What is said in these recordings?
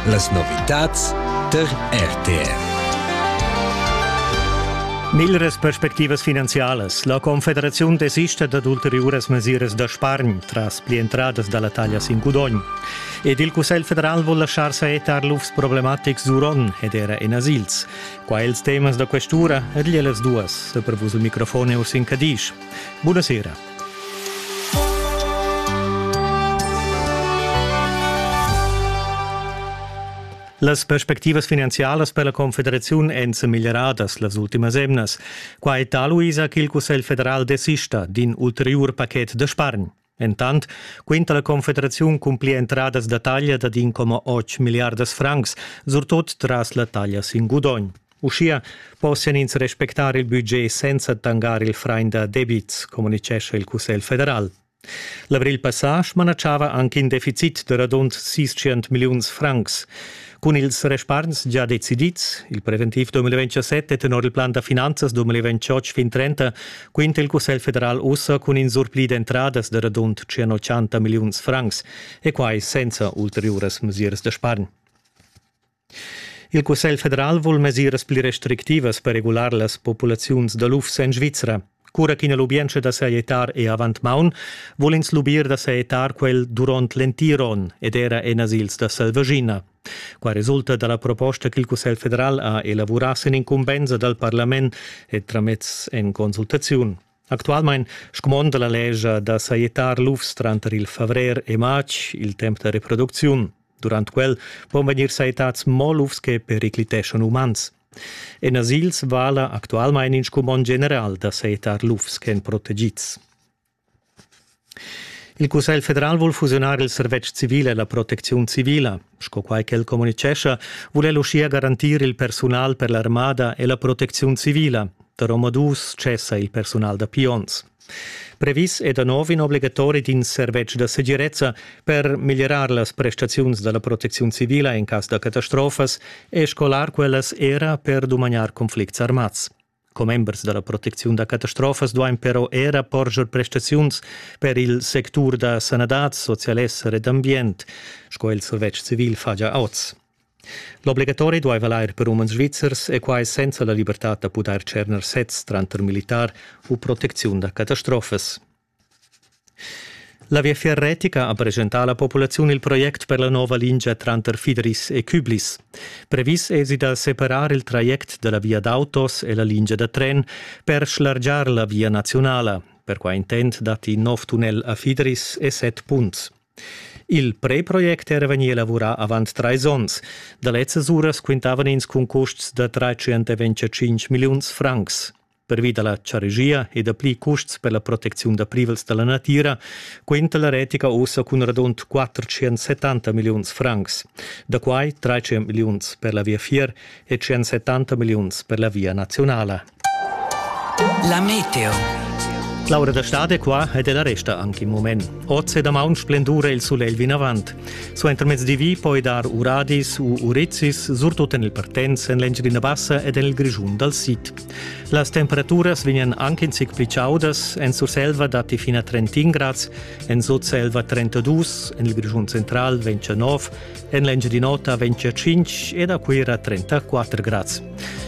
Las novitads tar RTR. Miglras perspectivas finanzialas. La Confederaziun desista dad ulteriuras mesiras da spargn tras pli entradas da la taglia sin gudogn. Ed il Cussegl federal vul laschar saetar lufs problematics d'uron ed era en asils. Qua ils temas da questura, ed las duas, da prevus il microfon e Ursin Cadisch. Buonasera. Las perspectivas finanzialas per la Confederaziun èn semeglieradas las ultimas emnas. Qua è taluisa ch'il Cussegl federal desista d'in ulteriur pachet da spargn. Entant quinta la Confederaziun cun pli entradas da taglia dad 1,8 milliardas francs, surtut tras la taglia sin gudogn. Uschia possian ins respectar il budget senza tangar il frain da debits, communitgescha il Cussegl federal. L'avril passà smanatschava anche in deficit da radund 600 milliuns francs. Cun ils respargns già decidids, il preventiv 2027 e tenor il plan da finanzas 2028-2030, quinta il Cussegl federal ussa cun in surpli d'entradas da radund 180 milliuns francs e quai senza ulteriuras mesiras da spargn. Il Cussegl federal vul mesiras pli restrictivas per regular las populaziuns da lufs en Svizra. Cura ch'ina lubientscha da sajettar è avant maun, vul ins lubir da sajettar quel durant l'entir onn ed era en asils da selvaschina. Qua resulta dalla proposta ch'il Cussegl federal ha elavurà sin incumbensa dal parlament e tramez en consultaziun. Actualmein scumonda la lescha da sajettar lufs tranter il favrer e matg il temps da reproducziun. Durant quel pon vegnir sajettads mo lufs che pericliteschon umans. En asils vala actualmein in scumond general da sajettar lufs ch'èn protegids. Il Cussegl federal vul fusiunar il servetsch civil e la protecziun civila. Sco quai ch'el communitgescha, vul el uschia garantir il persunal per l'armada e la protecziun civila. Da Romodus cessa il persunal da pions. Previs è da nov in obligatori d'in servetsch da segirezza per miglierar las prestaziuns da la protecziun civila in cas da catastrofas e scolar quellas era per dumagnar conflicts armads. Commembers da la protecziun da catastrofas duain però era porscher prestaziuns per il sectur da sanadad, socialesser ed ambient, sco il servetsch civil fa gia oz. L'obligatori dueva lair per umens svizzers e quai senza la libertad da pudair tscherner sez tranter militar u protecziun da catastrofas. La Viafier retica ha presentà alla populaziun il project per la nova lingia tranter Fideris e Küblis. Previs èsi da separar il traject da la via d'autos e la lingia da tren per schlargiar la via naziunala. Per quai intent datti in nov tunnel a Fideris e set punts. Il preproject era vegnì elavurà avant trais onns. Da lezzas uras quintavan ins cun custs da 325 milliuns francs. Pervi da la charegia e dapli custs per la protecziun da privels da la natira quinta la retica ussa cun radund 470 milliuns francs, da quai 300 milliuns per la viafier e 170 milliuns per la via nazionala. La meteo. Laura da Stade qua ed è la resta anche in moment. Oz e da maun splendura il solegl vinavant. Suenter mezz di vi poi dar uradis u urizis, surtut en il Partenz, en l'Engiadina Bassa ed en il Grischun dal Sid. Las temperaturas vegnan anche in zic pli chaudas. En Surselva datti fin a 31 grads, en Sutselva 32, en il Grischun central 29, en l'Engiadin'Ota 25 ed a Cuira 34 grads.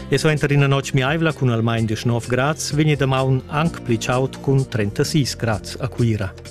E suenter ina notg miaivla cun almain 19 grads vegni damaun anc pli chaud cun 36 grads a Cuira.